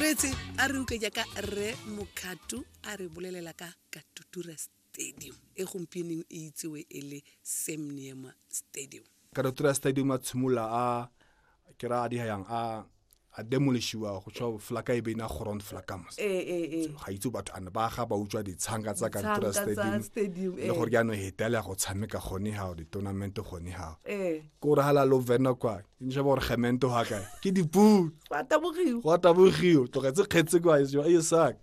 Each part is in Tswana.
retse a re uke jaaka rre mokgato a re bolelela ka katutura stadium e gompieneng e itsewe e le semniema stadium katutura stadium a tshimolola a ke ra a di yang a a demolishiwa go tswa flaka e beina ground flakamos eh, eh, eh. ga itse batho ane ba ga ba utswa ditshanga tsa katutura stadium le gore jaanong hetela go tshameka gone ga di-tournament gone ga ke gore ga la lo vena kwa ke nshaba gore gemento ga kae ke dipuu gwa tabogiwa tlogetse kgetse kwa e saka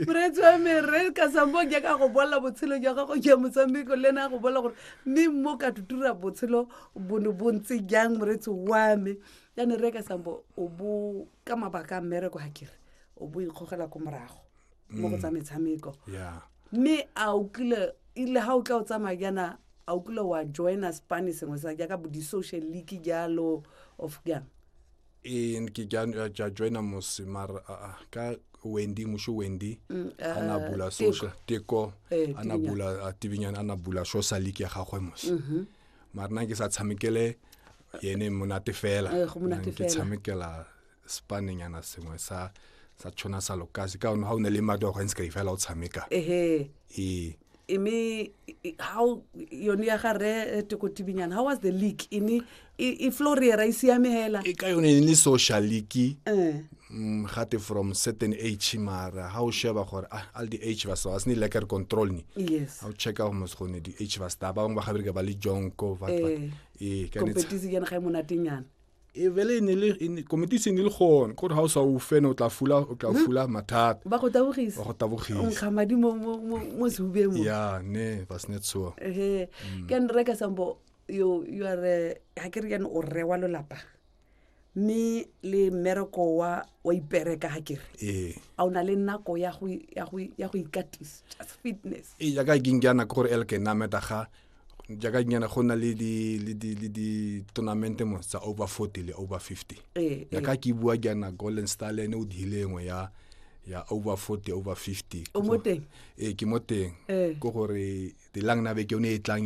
moreetsi wa me re ka sambo ke ka go bolela botshelo jwa gago jwa motshameko le ena a go bolela gore mme mo ka tutura botshelo bono bontse jang moreetsi wa me yane re ka sambo o bo ka mabaka a mmereko ga kere o bo ikgogela ko morago mo go mm. tsa metshameko mme a o kile ile ga o tla o tsamaya jaana a o kile wa joina spane sengwe sa jaaka bo di-social league jalo of jang ee ke ja- ja joina mose mara aa ka wendy musho wendy Mm, a ah, na bula Teko. social teko Eh, a na Tibinyana. bula a tibinyana a na bula social league ya gagwe mose Mhm. mara nna ke sa tshamekele yene monate fela Eh, go monate Nna ke fela. tshamekela spanenyana sengwe sa sa tshwana sa lokase ka one ga o ne le madi wa go ntse ka ifela o tshameka ehe ee imi how yone ya ga re tekotibinyana how was the league ini i floriera i siame hela e ka yone e le social league eh mm, gate from certain age mara ga o sheba gore ah, all the age ba sa sne leker control ni yes ga o checka gore mos gone di age ba sta ba bangwe ba gabereka ba le jonko ba ba- Eh, ee ka ne tsa- competition yana ga e monatenyana e vele e ne le e ne- committee se ne le gone gore ga o sa o fene o tla fula o tla fula mathata ba go tabogisa ba go tabogisa nkga madi mo- mo- mo mo sehubeng mo ya ne was not so ehe ke ne re ka sambo yo yo are ha ke re yana o rre wa lolapa mme le mmereko wa wa ipereka ha ke re ee a o na le nako ya go ya go ya go ikatisa just fitness e jaaka ke nkeana ke gore elke nameta ga jaaka nyana go na le di le di le di tournament mo tsa over 40 le over 50 ee ya ka ke bua jaana golden star le ene o diile engwe ya ya over 40 over 50 o mo teng ee ke mo teng Ee. ko gore dilang na beke o ne e tlang